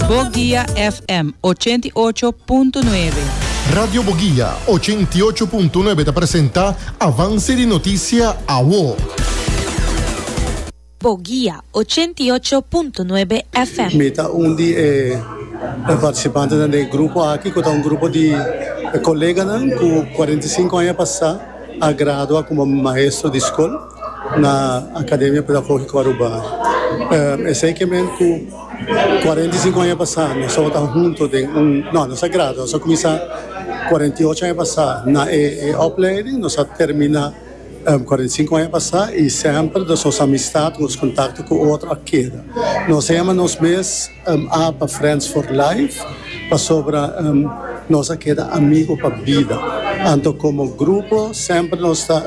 Boguia FM ochenta i ocho punto nuebe. Radio Boguia ochenta i ocho punto nuebe ta presenta Avance di Noticia Awo. Boguia ochenta i ocho punto nuebe FM. Mi ta un di e participantenan den e grupo aki cu ta un grupo di e coleganan cu cuarenta y cinco aña pasa a gradua como maestro di scol na Academia Pedagógico Aruba. Esey ke men cu. Cuarenta y cinco aña pasá nos tabata hunto den un, no, nos a gradua, nos a cuminsá cuarenta y ocho aña pasá na e opleiding, nos a terminá cuarenta y cinco aña pasá i semper nos nos amistad, nos contacto cu otro a keda. Nos a yama nos mes apa friends for life pasobra nos a keda amigo pa bida. Anto como grupo semper nos ta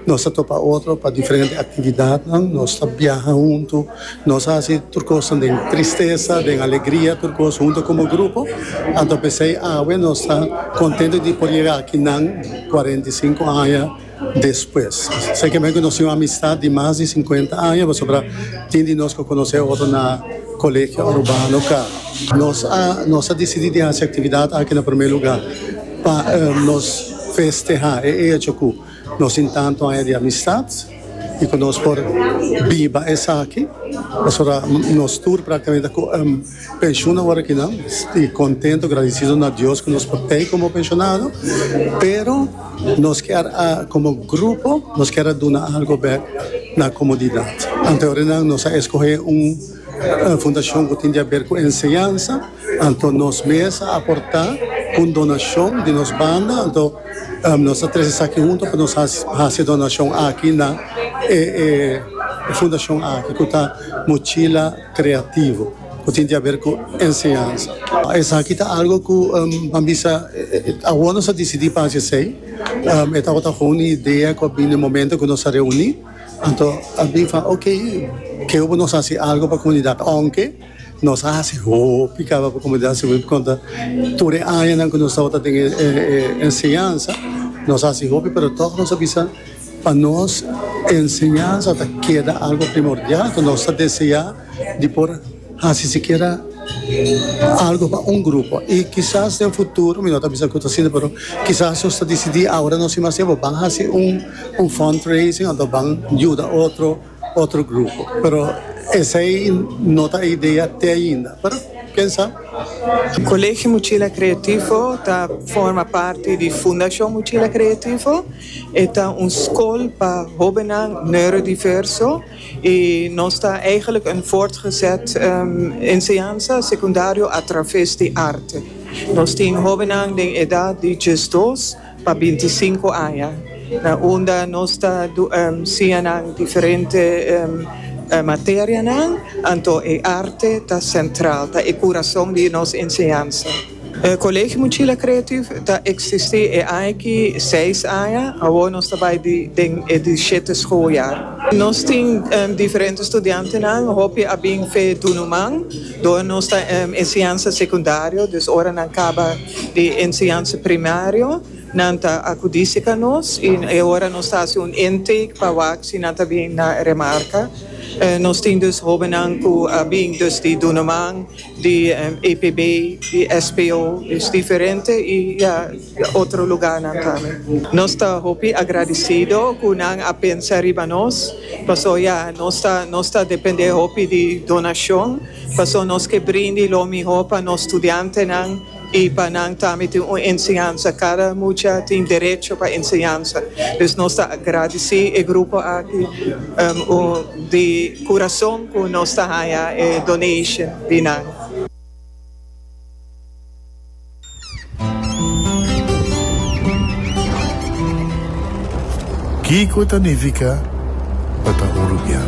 nos ta topa otro pa diferente actividadnan, nos ta biaha hunto. Nos hasi tur kosnan den tristesa, den alegria, tur kos huntu komo grupo. Anto p'esei awe nos ta kontento di por yega aki nan kuarenta i sinku aña despues. Serkamente ku nos tin un amistat di mas di sinkuenta aña pasobra tin di nos ku a konosé otro na Colegio Arubano ka. Nos a nos a disidi di hasi aktividat aki na promé lugá pa nos festehá e echo ku. Nos tin tantu aña di amistad y cu nos por biba esaki, pasobra nos tur practicamente ta pensionan awor akinan y contento, gradicido na Dios cu nos por tey como pensionado, pero nos kier a como grupo nos kier a duna algo bek na comunidad. Anteorenan nos a escoge un. Fundashon ku tin di aber ku enseñansa, anto nos mes a aportá ku un donashon di nos banda, anto nos ta trese esaki huntu pa nos hasi e donashon aki na e fundashon aki ku ta Mochila Creativo ku tin di aber ku enseñansa. Esaki ta algu ku pa bisa awor nos a disidí pa hasi esei, e tabata kon un idea ku a bini momento ku nos a reuní. Anto a bin fala, ok, kiko bo nos hasi algo pa komunidat? Ounke nos a hasi hopi kaba pa komunidat si bo tin konta tur e añanan ku nos tabata den e enseñansa, nos a hasi hopi pero tòg nos a bisa pa nos enseñansa ta keda algo primordial ku nos ta deseá di por Hasi sikiera algo pa un grupo i kisas den futuro, mi no ta bisa ku ta asina, pero kisas nos ta disidí awor nos i mas tempu ban hasi un fundraising òf ta ban yuda otro otro grupo. Pero esei no ta e idea te ainda, pero ken sa. Colegio Mochila Creativo ta forma parti di Fundacion Mochila Creativo. E ta un scol pa hobennan neurodiverso. Y nos ta eigenlijk een voortgezet enseñansa secundario a traves di arte. Nos tin hobennan den edad di diesdos pa bintisinco aña na unda nos ta siña nan diferente materianan, anto e arte ta central, ta e curazon di nos enseñansa. Colegio Mochila Creative ta existi e aña aki seis aña, awor nos ta bay den e diesisiete schooljaar. Nos tin diferente studiantenan, hopi a bin fe Dunuman, door nos ta enseñansa secundario, dus ora nan caba di enseñansa primario nan ta acudi si ca nos y e ora nos ta haci un intake pa wac si nan ta bin na Remarca. Nos tin dus hobennan cu a bin dus di Dunuman, di APB, di SPO es diferente y ya otro lugar nan tambe. Nos ta hopi agradecido cu nan a pensa riba nos paso ya nos ta nos ta depende hopi di donacion paso nos ke brindi lo mihor pa nos studiantenan. Y pa nan tambe tin un enseñansa. Cada mucha tin derecho pa enseñansa. Pues nos ta agradici e grupo aki di curazon cu nos ta haya e donation di nan. Kico ta nifica pa ta un rubian?